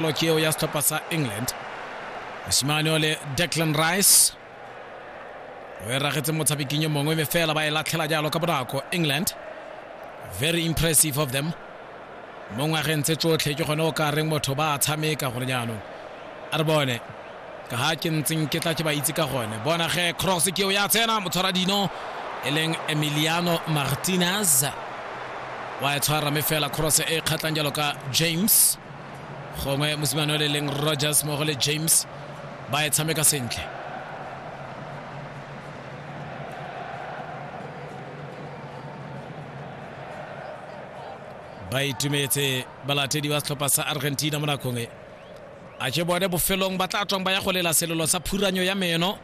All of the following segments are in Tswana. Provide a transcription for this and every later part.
Lo ke eo ya setlhopha sa england mosimane ole declan rice o e ragetse motshabeking yo mongwe mme fela ba e latlhela jalo ka bonako england very impressive of them mo ngwageng tse tsotlhe ke gone o ka reng motho ba a tshameka gore jaanong a re bone ka ga ke ntseng ke tla ke ba itse ka gone bona ge cross ke eo ya tsena motshwara dino e leng emiliano martinez wa e tshwara mme fela cross e kgatlhang jalo ka james gongwe mosimane o le leng rogers mogo le james ba e tshameka sentle ba itumetse balatedi ba setlhopha sa argentina mo nakong e a ke bone bofelong ba tla tswang ba ya go lela selelo sa phuranyo ya meno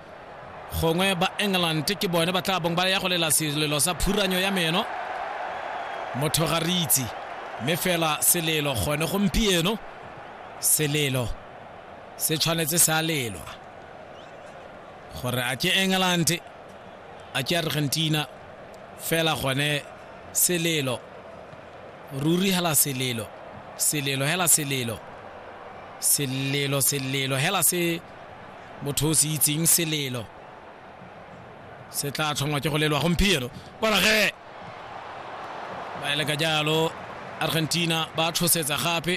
gongwe ba england ke bone ba tla bong ba ya go lela selelo sa phuranyo ya meno motho ga re itse mme fela selelo gone gompieno selelo se tshwanetse sa lelwa gore a ke england a ke argentina fela gone selelo ruri hela selelo selelo hela selelo selelo selelo hela se motho o se itseng selelo se tla tlhongwa ke go lelwa gompieno borage ba ele ka jalo argentina ba tshosetsa gape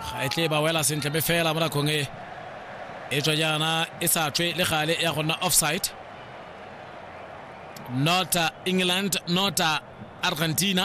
ga e tle ba wela sentle me fela mo nakong e e tswa jaana e sa tswe le gale ya go nna offside not uh, england not uh, argentina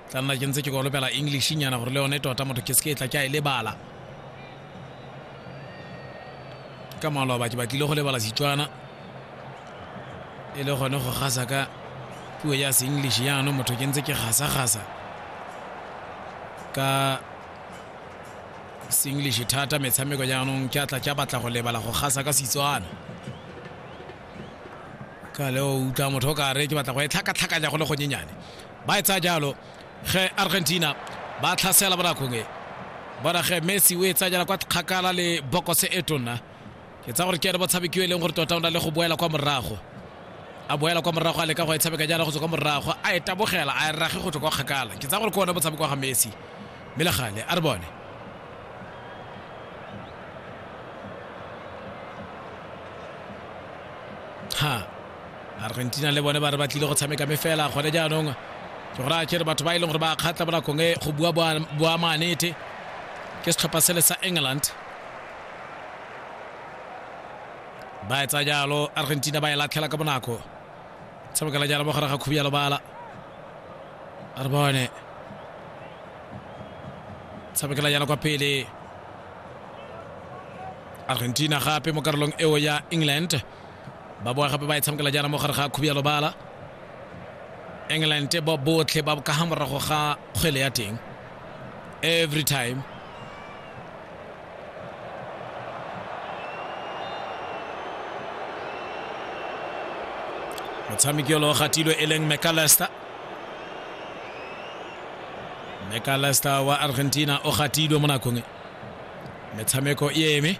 tla nna ke ntse ke kolopela english nyana gore le yone tota motho ke se ke tla ke a e lebala ka maloba ke batlile go lebala setswana e le gone go gasa ka puo ya seenglish yaanong motho ke ntse ke gasa-gasa ka seenglish thata metshameko jaanong ke atla ke batla go lebala go gasa ka setswana ka le o utlwa motho o ka re ke batla go e tlhakatlhakanya go le gonyenyane ba e tsaya jalo ge argentina ba tlhasela bonakong e bona ge messi o e tsaya jala kwa kgakala le bokose e tonna ke tsa gore ke ene botshabekiwa e leng gore tota o na le go boela kwa morago a boela kwa morago a leka go e tshameka jana go tswa kwa morago a e tabogela a e rage go tswa kwa kgakala ke tsa gore ke one botshameko wa ga messi mme le gale a re bone ha argentina le bone ba re ba tlile go tshameka me fela gone jaanong ke gore a kere batho ba e leng gore ba kgatla mo nakong e go bua boamanete ke setlhopha sele sa england ba etsa jalo argentina ba e latlhela ka bonako tshamekela jalo mo gare ga khubi ya lobala a re bone tshamekela jalo kwa pele argentina gape mo karolong eo ya england ba boa gape ba e tshamekela jaana mo gare ga khubi ya lobala england ba botlhe ba ka ga morago ga kgwele ya teng every time motshameki olo gatilwe e leng mcallister mcallister wa argentina o gatilwe mo nakong e metshameko e eme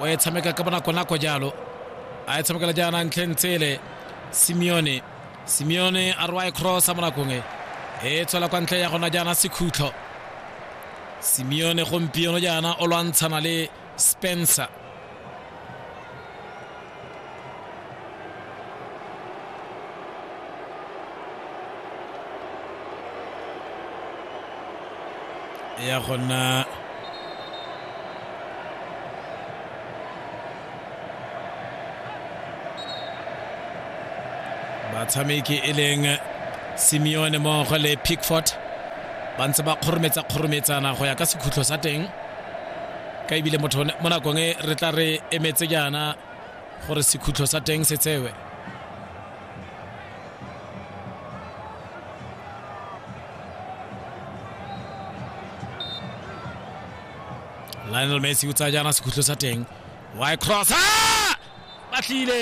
o e tshameka ka bonakonako jalo a e tshamekela jaana ntlheng tsele simeone simeone a rwa e crossa mo nakong e e tswela kwa ntle ya gona jaana sekhutlo simeone gompieno jaana o lwantshana le spencer ya go nna batshameki e leng simeone mmogo le pickford ba ntse ba kgorometsa kgorometsana go ya ka sekhutlho sa teng ka ebile motho mo nakong e re tla re emetse jaana gore sekhutlho sa teng se tsewe lionel messi o tsaya jaana sekhutlho sa teng wy cross batlile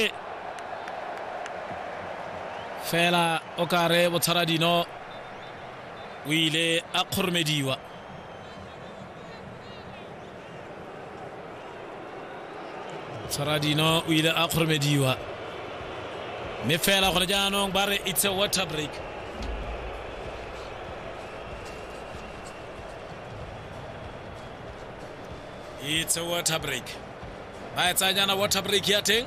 fela o kare botshwara dino o ile a kgoromediwa tshwaradino o ile a kgoromediwa mme fela gone jaanong ba re it's a water break it's a water break ba e tsayanyana water break ya teng